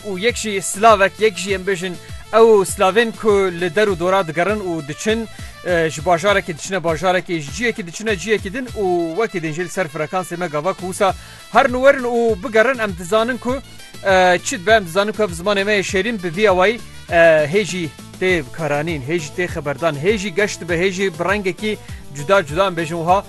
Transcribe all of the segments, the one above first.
û yek jî slavek yek jî em bêjin ew slavên ku li der û dora digerin û diçin ji bajarekî diçine bajarekî ji ciyekî diçine ciyekî din û wekî din jê li ser frekansê me gava ku wisa herin û werin û bigerin em dizanin ku çi dibe em dizanin ku ev zimanê me yê şêrîn bi vî awayî hê jî tê bikaranîn hê jî tê xeberdan hê jî geş dibe hê jî bi rengekî cuda cuda em bêjin wiha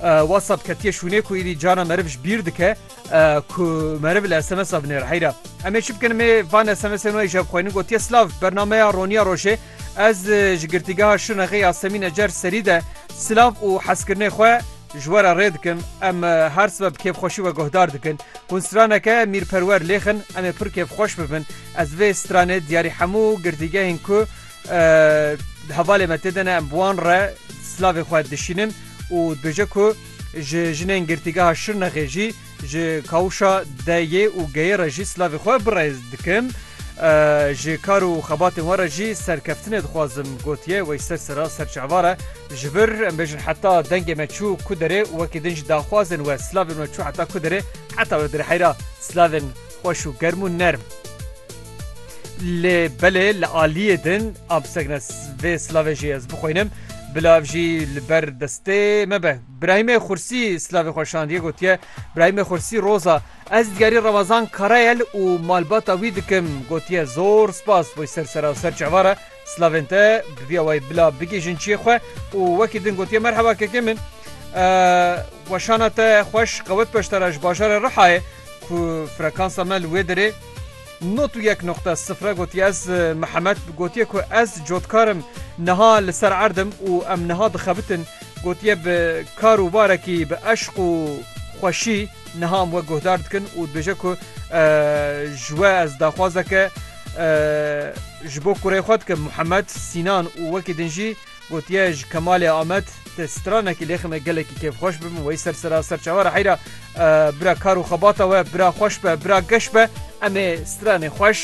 WhatsApp ketiye şûnê ku îdî cara meriv ji bîr dike ku meriv li SMSa binêr heyra. Em ê çi bikin mê van SMSên wê jeb xweynin gotiye silav bernameya roniya rojê ez ji girtîgeha Şirnexê ya Semîn Ecer serî de silav û hezkirinê xwe ji we re rê dikim em her sibe bi kêfxweşî we guhdar dikin. Hûn straneke mîrperwer lêxin em ê pir kêfxweş bibin. Ez vê stranê diyarî hemû girtîgehên ku Di hevalê me tê de ne em bi wan re silavê xwe dişînin û dibêje ku ji jinên girtîgeha Şirnexê jî ji Kawuşa DY û GY re jî silavê xwe bi rêz dikim. Ji kar û xebatên we re jî serkeftinê dixwazim gotiye Weyser Sera Serçeevare ji vir em bêjin heta dengê me çû ku derê û wekî din ji daxwazên we silavên we çû heta ku derê heta wê derê heyra silavên Xweş û germ û nerm. Lê belê li aliyê din a bisegine vê silavê jî ez bixwînim bila ev jî li ber destê me be. Birahîmê Xursî silavê xwe şandiye gotiye Birahîmê Xursî roza ez diyarî Remezan Karayel û malbata wî dikim gotiye zor spas bo ser sera ser çavara Slavên te bi vî awayî bila bigihîjin çiyê xwe û wekî din gotiye Merheba kekê min. Weşana te xweş qewet beşdara ji bajarê Rihayê ku frekansa me li wê derê nod û yek noqte sifre gotiye ez Mihemed gotiye ku ez cotkar im niha li ser erd im û em niha dixebitin gotiye bi kar û barekî bi eşq û xweşî niha em we guhdar dikin û dibêje ku ji we ez daxwazeke Ji bo kurê xwe dike Muhemed Sînan û wekî din jî gotiye ji Kemalê Amed te stranekî lêxim e gelekî kêfxweş bibim wey ser sera ser çawara heyra bira kar û xebata we bira xweş be bira geş be em ê stranê xweş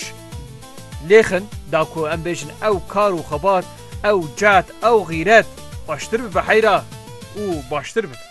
lêxin da ku em bêjin ew kar û xebat ew cehd ew xîret xweştir bibe heyra û baştir bibe.